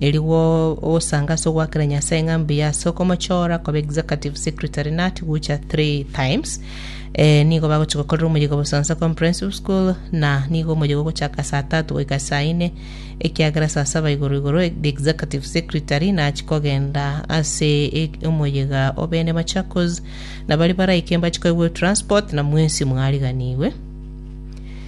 Erio gosanga ase ogoakera Nyasae ng'a mbuya ase okomochora koba executive secretary nut gocha three times. Eh, nigo bagochi gokorera omoyega Obosonsa Comprehensive School na nigo omoyega ogochaka saa tatu goika saa ine ekiagera saa saba igoro igoro the executive secretary nachi kogenda ase e- omoyega obene Machakos na bari baraike mbachi koigwa transport na mwensi mwariganigwe.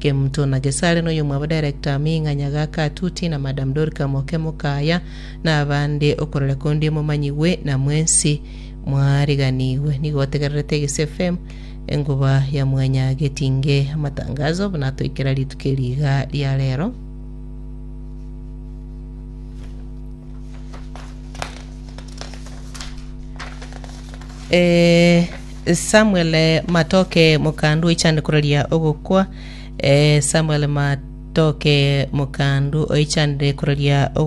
Kemuto na Gesare noyomw'abadirector amo ing'anya gaka Tuti na Madam Dorika moke mokaya nabande okorora kondie momanyigwe na mwensi mwariganigwe. Nigo otegererete Gise FM engoba ya mwanya getinge amatangazo buna atoikera rituko eri iga ria rero. Eh, Samuel Matoke Mokandu oichande koraria ogokwa. Eh, Samuel Matoke Mokandu oichande koraria ogokwa.